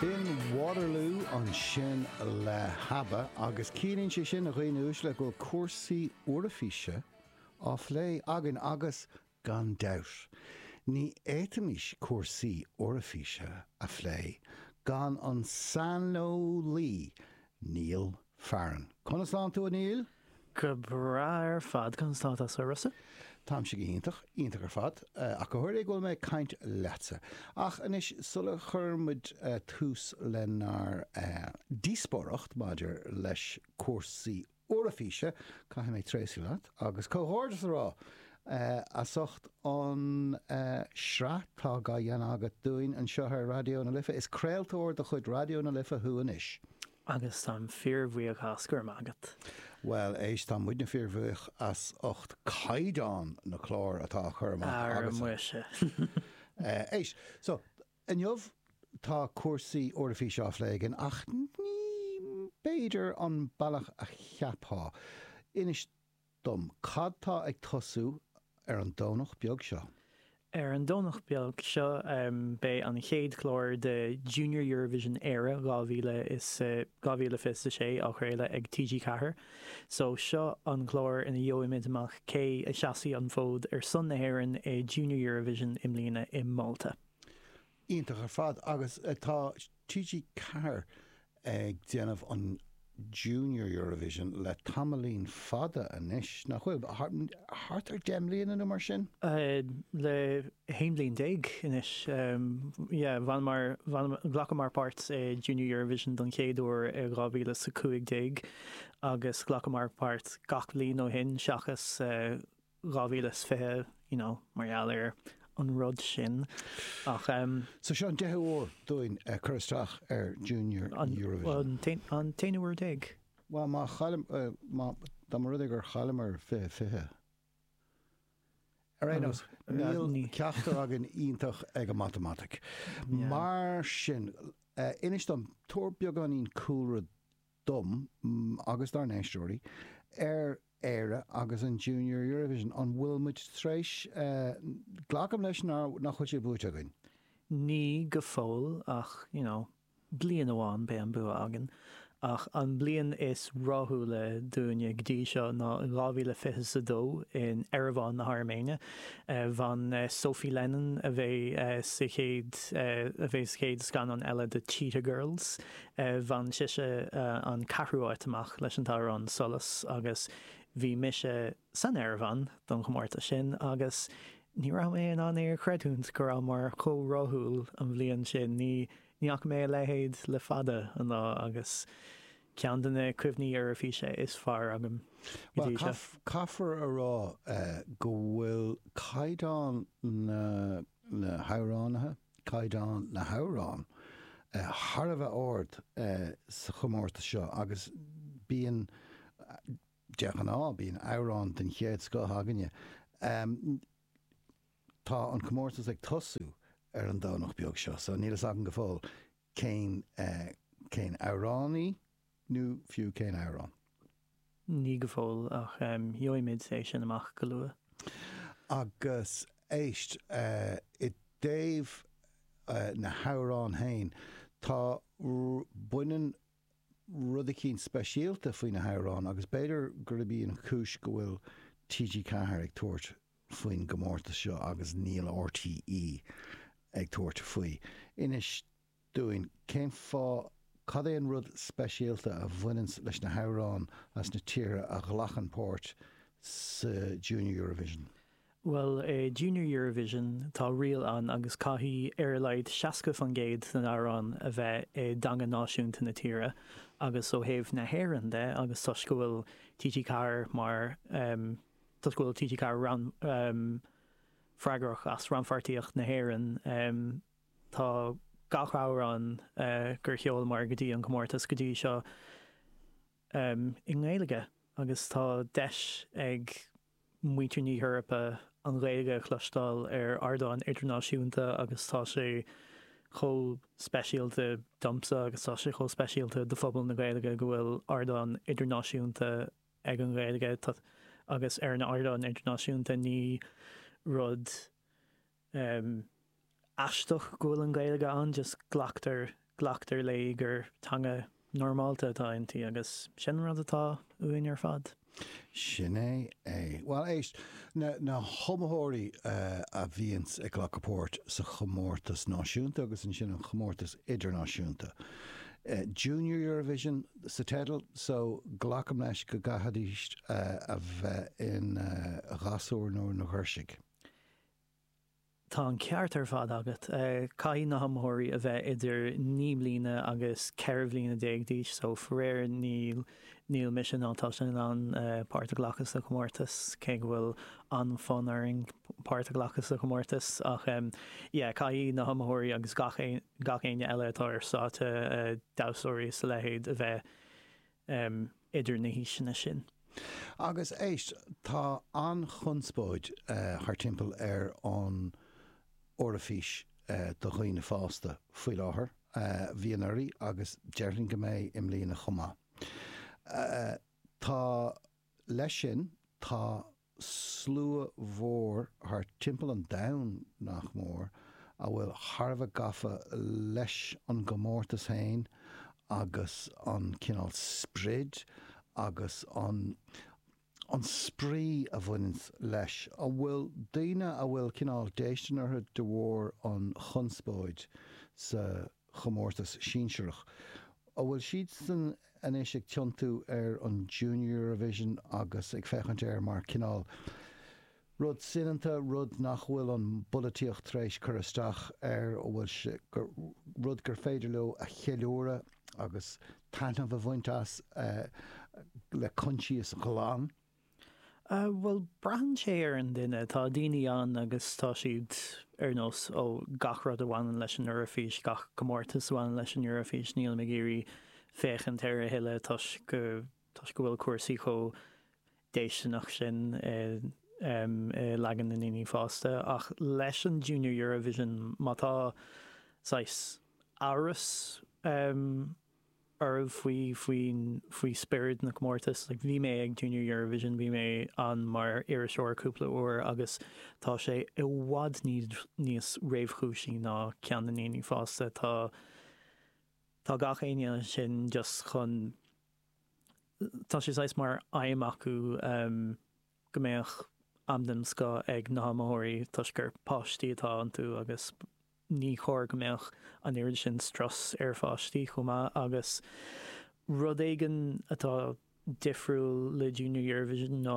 B'in Waterloo ansin le hAbba agus ciallaíonn sé sin, a dhaoine uaisle, go bhfuil cúrsaí Eoraifíse á bplé againn agus, gan dabht, ní fhéadfaimis cúrsaí Eoraifíse a phlé gan an saineolaí Niall Fearn. Conas tánn tú a Néill? Go breá ar fad, conas tá tusa a Rossa? Táimse go hiontach, iontach ar fad, ach go háirithe go bhfuil mé ag caint leatsa. Ach anois, sula chuireann muid tús lenár ndíospóireacht maidir leis cúrsaí Eoraifíse, caithfidh mé tréaslú leat agus comhghairdeas a rá as ucht an sraith atá á dhéanamh agat dúinn anseo ar Raidió na Life. Is craoltóir de chuid Raidió na Life thú anois. Agus táim fíor bhuíoch as, go raibh maith agat. Bhuel, éist, tá muidne fíor bhuíoch as ucht caighdeán na cláir atá á chur amach agatsa. Ara muise. Éist, so, inniu tá cúrsaí Eoraifíse á phlé againn ach ní, b'fhéidir, an bealach a cheapfá. Inis dom cad tá ag tosú ar an Domhnach beag seo. Ar an Domhnach beag seo beidh an chéad chlár de Junior Eurovision Éire 2026 á chraoladh ag TG Ceathair so seo an clár ina gheobhaimid amach cé a sheasfaidh an fód ar son na hÉireann i Junior Eurovision i mbliana i Málta. Iontach ar fad agus tá TG4 ag déanamh an Junior Eurovision le tamaillín fada anois, nach bhfuil? Thart ar 10 mbliana nó mar sin? Le 11 bliain anois, yeah. Bhaineamar, ghlacamar páirt i Junior Eurovision don chéad uair i 2015 agus ghlacamar páirt gach bliain ó shin seachas 2020, you know, mar gheall ar an rud sin ach. So seo an deichiú uair dúinn cur isteach ar Junior Eurovision. Bhuel, an t-aonú uair déag. Bhuel, má chaillim, má, dá mba rud é gur chailleamar 20, 20. Ar aon nós, níl ceachtar againn iontach ag an matamaitic. Mar sin, inis dom, tabhair beagáinín cúlra dom agus dár n-éisteoirí ar Éire agus an Junior Eurovision. An bhfuil muid tar éis. Glacaim leis nár, nach bhfuil sé buaite againn? Ní go fóill ach you know bliain amháin beidh an bua againn ach an bliain is ráthúla dúinne go dtí seo ná 2022 in Eiriván na hAirméine. Bhain Sophie Lennon, a bheidh sa chéad, a bheidh sa chéad scannán eile de Cheetah Girls, Bhain sise an ceathrú áit amach leis an t-amhrán Solas agus bhí mise san Airméin don chomórtas sin agus ní raibh mé in ann é a chreidiúint go rabhamar chomh ráthúil an bhliain sin. Ní fhaca mé a leithéid le fada an lá agus ceann de na cuimhní Eoraifíse is fearr agam go dtí seo. Bhuel, caithfear a rá go bhfuil caighdeán na n-amhránaithe, caighdeán na hamhrán thar a bheith ard sa chomórtas seo agus bíonn, de ghnáth, bíonn amhrán den chéad scoth againne. Tá an comórtas ag tosú ar an Domhnach beag seo so níl fhios agam go fóill cén amhránaí, nó fiú cén amhrán. Níl go fóill, ach gheobhaimid é sin amach go luath. Agus éist, i dtaobh na hamhráin féin, tá, baineann rud eicínt speisialta faoi na hamhráin agus b'fhéidir gurb í an chúis go bhfuil TG4 ag tabhairt faoin gcomórtas seo agus níl RTÉ ag tabhairt faoi. Inis dúinn. Cén fáth, cad é an rud speisialta a bhaineanns leis na hamhráin as na tíortha a ghlacann páirt sa Junior Eurovision? Bhuel, i Junior Eurovision tá riail ann agus caithfidh ar a laghad 60% den amhrán a bheith i dteanga náisiúnta na tíre agus ó thaobh na hÉireann de agus toisc go bhfuil TG4 mar, toisc go bhfuil TG4 rannfhreagrach as rannpháirtíocht na hÉireann, Tá gach amhrán gur sheolamar go dtí an comórtas go dtí seo i nGaeilge agus tá deis ag muintir na hEorpa an Ghaeilge a chloisteáil ar ardán idirnáisiúnta agus tá sé chomh speisialta domsa agus tá sé chomh speisialta do phobal na Gaeilge go bhfuil ardán idirnáisiúnta ag an Ghaeilge agus ar an ardán idirnáisiúnta ní rud aisteach go bhfuil an Ghaeilge ann just glactar glactar léi gur teanga normálta atá inti agus sin an rud atá uainn ar fad. Sin é é. Bhuel éist, na na hiomaitheoirí a bhíonns ag glacadh páirt sa chomórtas náisiúnta agus ansin an chomórtas idirnáisiúnta, Junior Eurovision sa teideal, so glacaim leis go gcaithfidís a bheith ina ghasúir nó ina ghirsigh. Tá an ceart ar fad agat. Caithfidh na hiomaitheoirí a bheith idir naoi mbliana agus ceithre bliana déag d'aois so faraor níl níl mise ná tusa in ann páirt a ghlacadh sa chomórtas cé go bhfuil an-fonn orainn páirt a ghlacadh sa chomórtas ach yeah caithfidh na hiomaitheoirí agus gach gach éinne eile atá ar stáitse damhsóirí is a leithéid a bheith um, idir na haoiseanna sin. Agus éist, tá an-chonspóid thart timpeall ar an Eoraifís do dhaoine fásta faoi láthair, bhí anuraidh agus déarfainn go mbeidh i mbliana chomh maith. Tá, leis sin, tá. slua mhór thart timpeall an domhain, nach mór, atá thar a bheith gafa leis an gcomórtas féin agus an cineál sprid agus an an spraoi a bhaineann leis, a bhfuil daoine a bhfuil cineál déistin orthu de bharr an chonspóid sa. chomórtas sinsearach. An bhfuil siadsan anois ag tiontú ar an Junior Eurovision agus ag féachaint air mar cineál rud soineanta, rud nach bhfuil an pholaitíocht tar éis cur isteach air, an bhfuil sé rud gur féidir leo a cheiliúradh agus taitneamh a bhaint as le coinsias ghlan? Bhuel, braitheann sé ar an duine. Tá daoine ann agus tá siad ar nós, ó, gach rud a bhaineann leis an Eoraifís, gach comórtas a bhaineann leis an Eoraifís, nílim ag iarraidh féachaint air a thuilleadh toisc toisc go bhfuil cúrsaí chomh déistineach sin i em i leagan na ndaoine fásta. Ach leis an Junior Eurovision, má tá saghas amhras em, oraibh faoi, faoi, faoi spiorad na comórtas. Like bhí mé ag Junior Eurovision, bhí mé ann mar iriseoir cúpla uair agus tá sé i bhfad níos, níos réamhchúisí ná ceann na ndaoine fásta. Tá, tá gach éinne ansin just chun, tá sé saghas mar aidhm acu ehm go mbeadh am den scoth ag na hiomaitheoirí toisc gur páistí atá iontu agus, Ní chóir go mbeadh an oiread sin strus ar pháistí chomh maith agus rud éigin atá difriúil le Junior Eurovision ná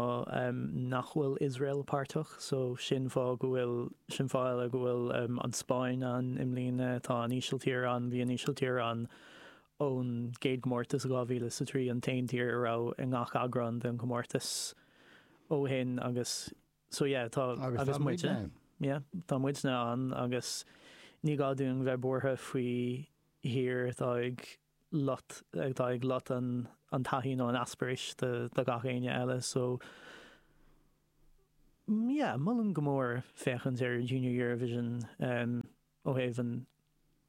nach bhfuil Iosrael páirteach so sin fáth go bhfuil, sin fáth eile go bhfuil an Spáinn ann i mbliana, tá an Ísiltír ann, bhí an Ísiltír ann ón gcéad gcomórtas i 2003, an t-aon tír a raibh i ngach eagrán den chomórtas ó shin agus. So yeah tá Agus tá muidne ann. yeah tá muidne ann agus ní gá dúinn bheith buartha faoi thír atá ag lot atá ag lot an an taithí nó an t-eispéireas do do gach éinne eile so yeah molaim go mór féachaint ar Junior Eurovision um ó thaobh an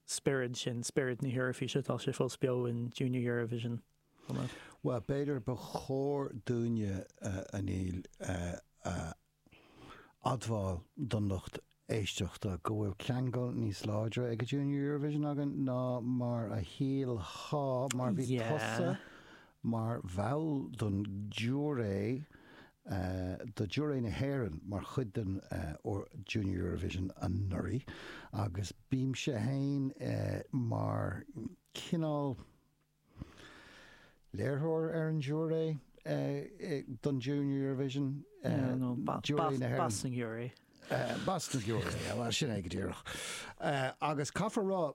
spiorad sin spiorad na hEoraifíse tá sé fós beo in Junior Eurovision. Bhuel, b'fhéidir ba chóir dúinne a Niall a admháil don lucht éisteachta go bhfuil ceangal níos láidre le Junior Eurovision againn ná mar a shílfeá mar bhí tusa mar bhall den ghiúiré do Ghiúiré na hÉireann mar chuid den Junior Eurovision anuraidh agus bhí mise féin mar chineál Léiritheoir ar an Jury don Junior Eurovision, Jury na hÉireann. Boss an Jury. Boss an Jury, bhuel sin é go díreach. Agus caithfear rá,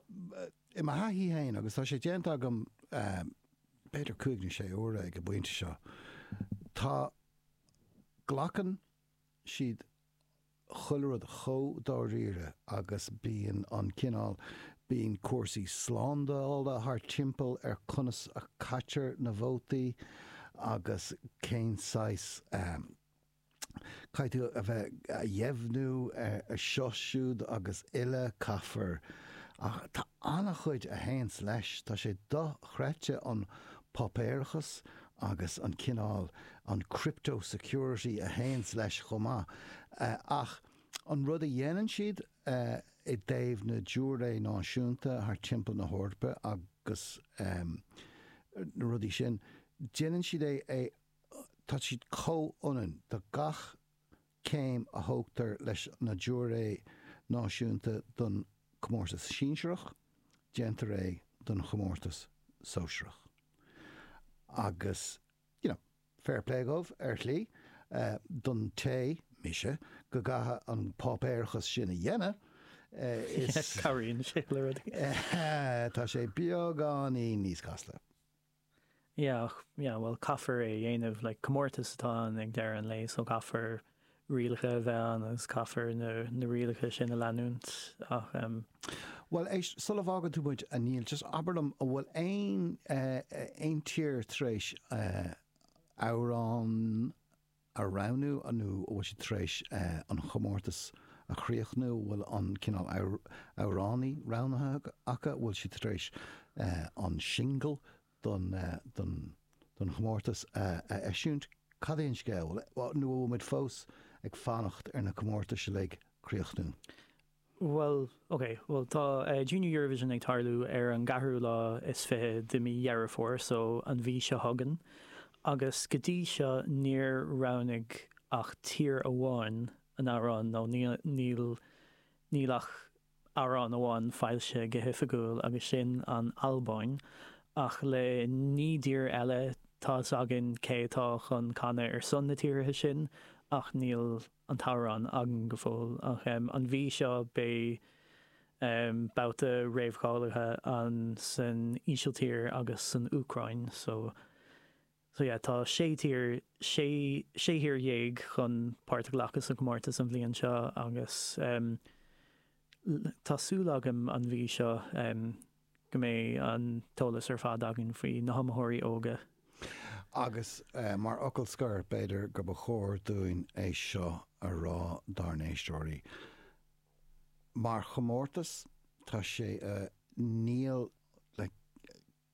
i mo thaithí féin, agus tá sé déanta agam b'fhéidir cúig nó sé uair ag an bpointe seo, tá, glacann siad chuile rud chomh dáiríre agus bíonn an cineál, bíonn cúrsaí slándála thart timpeall ar conas a chaitear na vótaí agus cén saghas ehm, caithfidh tú a bheith a dheimhniú eh, seo, siúd agus uile, caithfear, tá an-chuid a théanns leis, tá sé dochreidte an páipéarachas agus an cineál, an crypto-security a théanns leis chomh maith. Ach an rud a dhéanann siad i dtaobh na giúiré náisiúnta thart timpeall na hEorpa agus na rudaí sin, déanann siad é, tá siad comhionann do gach céim a thógtar leis na giúiré náisiúnta don chomórtas sinsearach, déantar é don chomórtas sóisearach agus you know fair play dhóibh ar shlí, don té, mise, go gcaithfidh an páipéarachas sin a dhéanamh is. Cabhraíonn sé le rudaí. tá sé beagáinín níos casta. yeah ach yeah bhuel caithfear é a dhéanamh like comórtas atá ann ag deireadh an lae so caithfear rialacha a bheith ann agus caithfear na na rialacha sin a leanúint ach um, Bhuel éist, sula bhfágann tú muid a Niall just abair liom an bhfuil aon eh, eh, aon tír tar éis eh, amhrán a roghnú nó an bhfuil siad tar éis an chomórtas a chríochnú, an bhfuil an cineál amhránaí roghnaithe acu, an bhfuil siad tar éis an singil don chomórtas a eisiúint, cad é an scéal, nó an bhfuil muid fós ag fanacht ar na comórtais uilig críochnú? Bhuel, ok, bhuel, tá Junior Eurovision ag tarlú ar an gceathrú lá is fiche de mí Dheireadh Fómhair, so, an mhí seo chugainn, agus go dtí seo níor roghnaigh ach tír amháin a n-amhrán, nó níl, níl ach amhrán amháin foilsithe go hoifigiúil agus sin an Albáin, ach le naoi dtír eile, tá's againn cé atá chun canadh ar son na tíortha sin ach níl, an t-amhrán againn go fóill ach an mhí seo beidh babhta réamhcháilithe ann san Ísiltír agus san Úcráin so so yeah tá sé tír sé thír dhéag chun páirt a ghlacadh sa gcomórtas an bhliain seo agus tá súil agam an mhí seo go mbeidh an t-eolas ar fad againn faoi na hiomaitheoirí óga. Agus mar fhocal scoir, b'fhéidir gur ba chóir dúinn é seo a rá dár n-éisteoirí. Mar chomórtas, tá sé níl le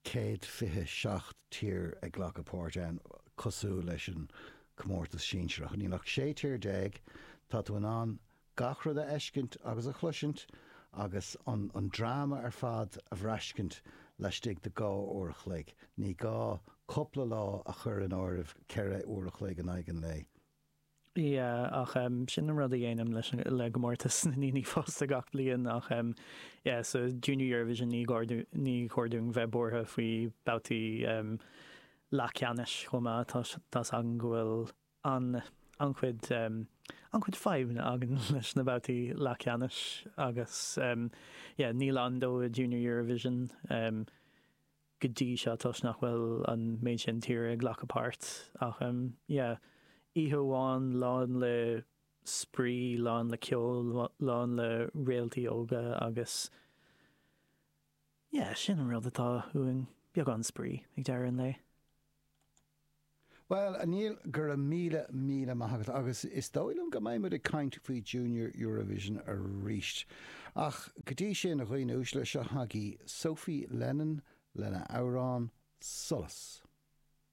céad fiche seacht tír ag glacadh páirt ann, cosúil leis an comórtas sinsearach. Níl ach sé tír déag. Tá tú in ann Gach rud a fheiscint agus a chloisint agus an an dráma ar fad a bhraiscint laistigh de dhá uair a chloig, ní gá cúpla lá a chur in áirithe ceithre uair a chloig in aghaidh an lae. Yeah ach em sin an rud a dhéanaim leis an le gcomórtas na ndaoine fásta gach bliain ach em yeah sa Junior Eurovision ní gá dú ní chóir dúinn bheith buartha faoi babhtaí em leathcheannais chomh maith tá tá 's againn go bhfuil an-chuid an-chuid fadhbanna againn leis na babhtaí leathcheannais agus níl ann dóibh i Junior Eurovision go dtí seo toisc nach bhfuil an méid sin tír ag glacadh páirt ach yeah oíche amháin lán le spraoi, lán le ceol, lán le réaltaí óga agus. Yeah, sin an rud atá uainn, beagán spraoi ag deireadh an lae. Bhuel, a Niall, go raibh míle, míle maith agat agus is dóigh liom go mbeidh muid ag caint faoi Junior Eurovision arís. Ach go dtí sin, a dhaoine uaisle, seo chugaibh Sophie Lennon lena amhrán, Solas.